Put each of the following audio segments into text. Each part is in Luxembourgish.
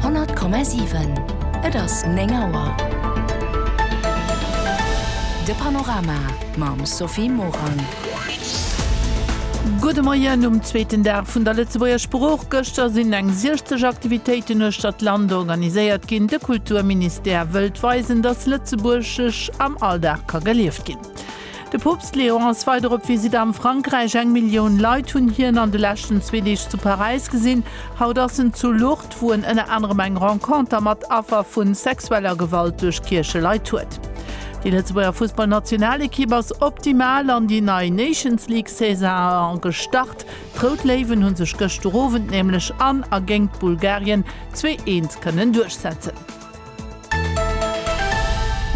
100,7 Et ass 9 Auer. De Panorama mam Sophie Morang. Gudde Moien um zweeten Dag vun der Lëtzebuerger Sprooch. Gëschter sinn eng 60 Aktivitéiten uechter d'Land organiséiert ginn. De Kulturministère wëllt weisen, datt Lëtzebuergesch am Alldag ka gelieft ginn. De Poopst Léon ass weider op Visitt am Frankräich. Eng Millioun Leit hunn hien an de leschten zwee Deeg zu Paräis gesinn. Haut ass en zu Lourdes, wou en ënner anerem eng Renconter mat Affer vu sexueller Gewalt duerch Kiercheleit huet. Déi Lëtzebuerger Fussballnationalekipp ass optimal an déi nei Nations League Saison gestart. D'Rout Léiwen hu sech gëschter Owend nämlech an a géint Bulgarien zwee Eent kënnen duerchsetzen.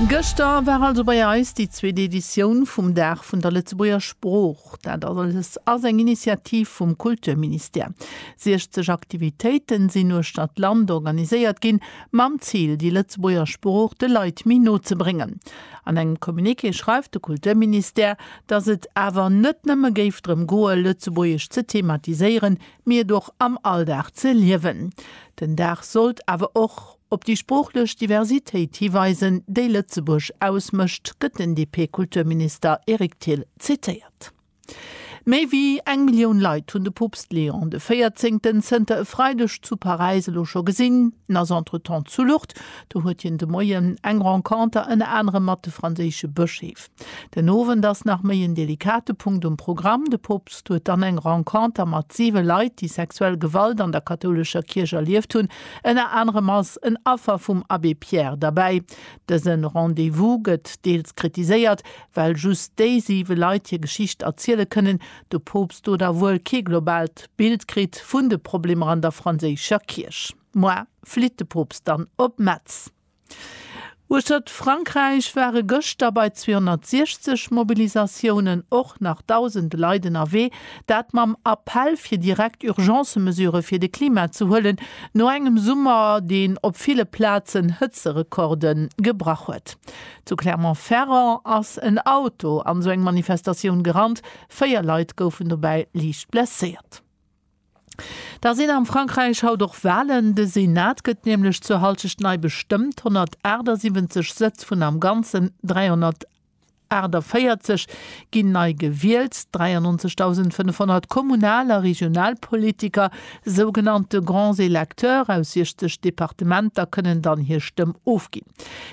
Gëschter war also bei eis déi zweet Editioun vum Dag vun der Lëtzebuerger Sprooch. Dat alles ass eng Initiativ vum Kulturministère. 60 Aktivitéiten sinn uechter d'Land organiséiert ginn, mam Zil, déi Lëtzebuerger Sprooch de Leit méi no ze bréngen. An engem Communiqué schreift de Kulturministère, datt et awer net nëmme géif drëm goe Lëtzebuergesch ze thematiséieren, mee et och am Alldag ze liewen. Den Dag sollt awer och op déi sproochlech Diversitéit hiweisen, déi Lëtzebuerg ausmécht, gëtt den DP-Kulturminister Eric Thill zitéiert. Méi wéi eng Millioun Leit hunn de Poopst Leon de Véierzéngten zënter e Freideg zu Paräis elo scho gesinn. En ass entretemps zu Lourdes, do huet hien de Moien eng Renconter ënner anerem mat de franséische Bëscheef. Den Owend ass nach méi en delikate Punkt um Programm, de Poopst huet dann eng Renconter mat siwe Leit, déi sexuell Gewalt an der kathoulescher Kierch erlieft hunn. Ënner anerem ass en Affer vum Abbé Pierre derbäi. Dëse Rendez-vous gëtt deels kritiséiert, well just déi siwe Leit hir Geschicht erziele kënnen, de Poopst do da wuel kee globaalt Bild kritt vun de Problemer an der franséischer Kierch. Moar flitt de Poopst dann op Metz. Uechtert Frankräich ware gëschter bei 260 Mobilisatiounen och nach dausende Leit ënnerwee, dat mam Appell fir direkt Urgence-Mesurë fir de Klima ze huelen, no engem Summer, deen op ville Plazen Hëtzerekorde gebrach huet. Zu Clermont-Ferrand ass en Auto an esou eng Manifestatioun gerannt, véier Leit goufen dobäi liicht blesséiert. Da sinn am Frankräich haut och Walen. De Senat gëtt nämlech zur Halschecht nei bestëmmt. 178 Sëtz vun am Ganzen 348 ginn nei gewielt. 93.500 Kommunal a Regionalpolitiker, sougenannte Grands électeurs, aus 60 Departementer kënnen dann hir Stëmm ofgin.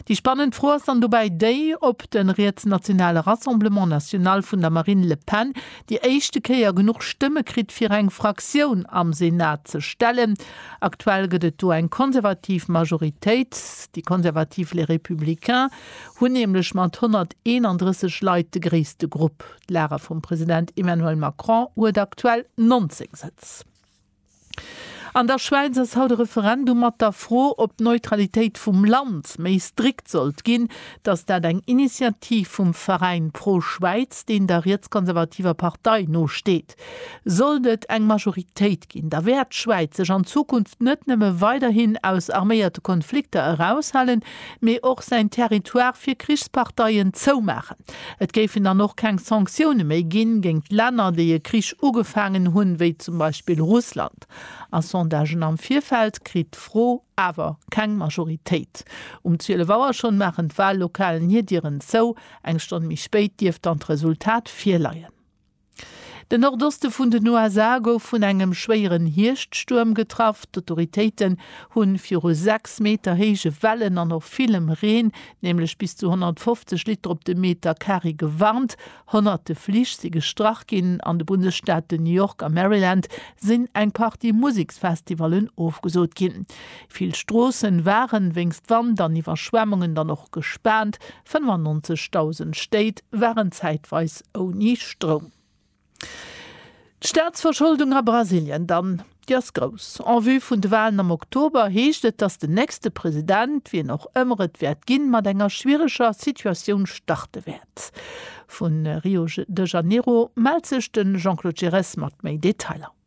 Déi spannend Fro ass dann dobäi déi, ob de rietsnationale Rassemblement National vun der Marine Le Pen déi éischte Kéier genuch Stëmme kritt fir eng Fraktioun am Senat ze stellen. Aktuell gëtt et do eng konservativ Majoritéit. Déi konservativ Les Républicains hunn nämlech mat 131 Leit de gréisste Grupp. D'Lager vum President Emmanuel Macron huet aktuell 19 Sëtz. An der Schwäiz ass haut e Referendum mat der Fro, ob d'Neutralitéit vum Land méi strikt sollt ginn. Datt dat eng Initiativ vum Veräin Pro Schwäiz, deen der rietskonservativer Partei no steet. Sollt et eng Majoritéit ginn, da wäert d'Schwäiz sech an Zukunft net nëmme weiderhin aus arméierte Konflikter eraushalen, mee och säin Territoire fir Krichsparteien zoumaachen. Et géifen dann och keng Sanktioune méi ginn géingt Länner, déi e Krich ugefaangen hunn, wéi zum Beispill Russland. A Sondagen am Virfeld kritt d'Fro awer keng Majoritéit. Um 12 Auer schonn maachen d'Wahllokalen hir Dieren zou. Eng Stonn méi spéit dierft dann d'Resultat virleien. Den Nordoste vun den USA gouf vun engem schwéieren Hierschtstuerm getraff. D'Autoritéiten hu viru 6 Meter héije Wellen an och villem Reen, nämlech bis zu 150 Liter op de Meter Kari, gewarnt. Honnerte Flich si gestrach ginn. An de Bundesstaate New York a Maryland sinn eng Partie Museksfestivallen ofgesot ginn. Vill Stroosse waren wéinst Wand an Iwwerschwemmungen dann och gespaant. 95.000 Stéit waren zäitweis ouni Stroum. D'Staatsverscholdung a Brasilien dann, déi ass grouss. En vue vun de Walen am Oktober heescht et, datt den nächste President, wien och ëmmer et wäert ginn, mat enger schwiereger Situatioun starte wäert. Vu Rio de Janeiro mellt sech de Jean-Claude Giresse mat méi Detailer.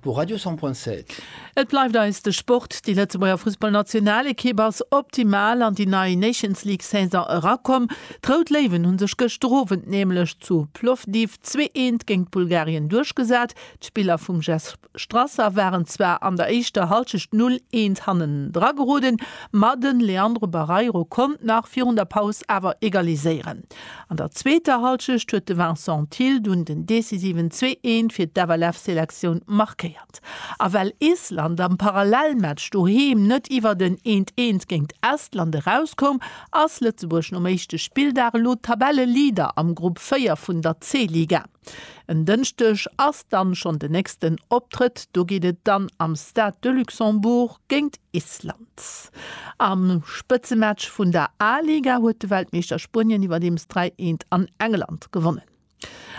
Pour Radio 100.7. Et bleift eis de Sport. Déi Lëtzebuerger Fussballnationalekipp ass optimal an déi nei Nations League Saison erakomm. D'Rout Léiwen hu sech gëschter Owend nämlech zu Plovdiv zwee eent géint Bulgarien duerchgesat. D'Spiller vum Jess Strasser waren zwar an der éischter Hallschecht null eent hannendra geroden, ma de Leandro Barreiro konnt nach virun der Paus awer egaliséieren. An der zweeter Halschecht huet de Vincent Thill dunn den decisiven Zwee-Eent fir d'FLF-Selektioun markéiert. A well Island am Parallelmatch doheem net iwwert en Eent-Eent géint Estland erauskoum, ass Lëtzebuerg nom éischte Spilldag elo Tabelleleader am Grupp 4 vun der C-Liga. En Dënschdeg ass dann schonn den nächsten Optrëtt, do geet et dann am Stade de Luxembourg géint Island. Am Spëtzematch vun der A-Liga huet de Weltmeeschter Spuenien iwwerdeems 3, 1 an England gewonnen.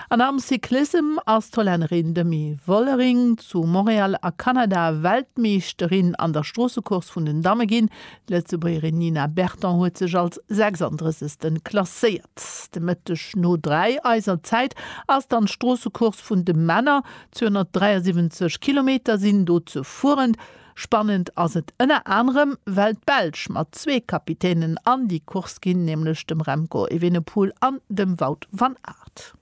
An am Cyclissem ass d'Hollännerin Demi Vollering zu Montréal a Kanada Weltmeeschterin an der Stroossecourse vun den Damme ginn. D'Lëtzebuergerin Nina Berton huet sech als 36. klasséiert. De Mëtteg no 3 eiser Zäit ass dann d'Stroossecourse vun de Männer. 273 Kilometer sinn do ze fueren. Spannend ass et ënner anerem, well d'Belsch mat zwee Kapitänen an déi Course ginn, nämlech dem Remco Evenepoel an dem Wout van Aert.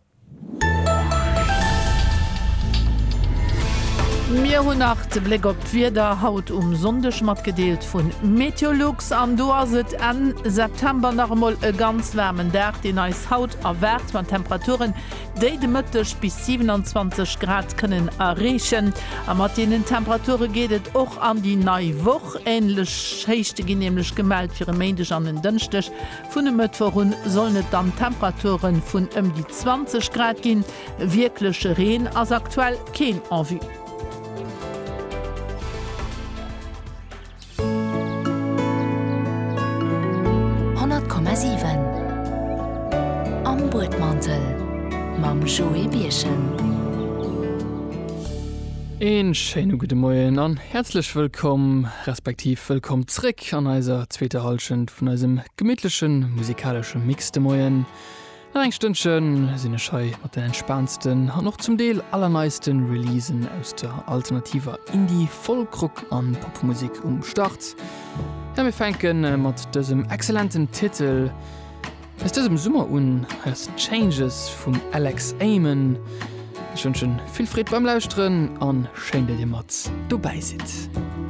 Mir hunn nach de Bléck op d'Wieder haut um Sonndeg matgedeelt vun Meteolux an do ass et Enn September nach emol e ganz waarmen Dag deen eis haut erwaart mat Temperaturen déi de Mëtteg bis 27 Grad kënnen erreechen a mat deenen Temperature geet et och an déi nei Woch. Änlech Héichte ginn nämlech gemellt fir e Méindeg an en Dënschdeg Vun e Mëttwoch un sollen et dann Temperature vun ëm déi 20 Grad ginn. Wierkleche Reen ass aktuell keen en vue. Een schéine gudde Moien an häerzlech wëllkomm, respektiv wëllkomm zréck! Musek an eiser zweeter Hallschent vun eisem gemittleche musikalesche Mix de Moien. Nach eng Stënnche sinn ech hei mat den entspaansten an och zum Deel allerneisten Releasen aus der alternativer Indie, Folkrock an Popmusik um Start. Ja, mir fänken mat dësem exzellenten Titel aus dësem Summer un, Has Changes vum Alex Amen. Ech wënschen vill Freed beim Lauschteren an schéin, datt dir mat dobäi sidd.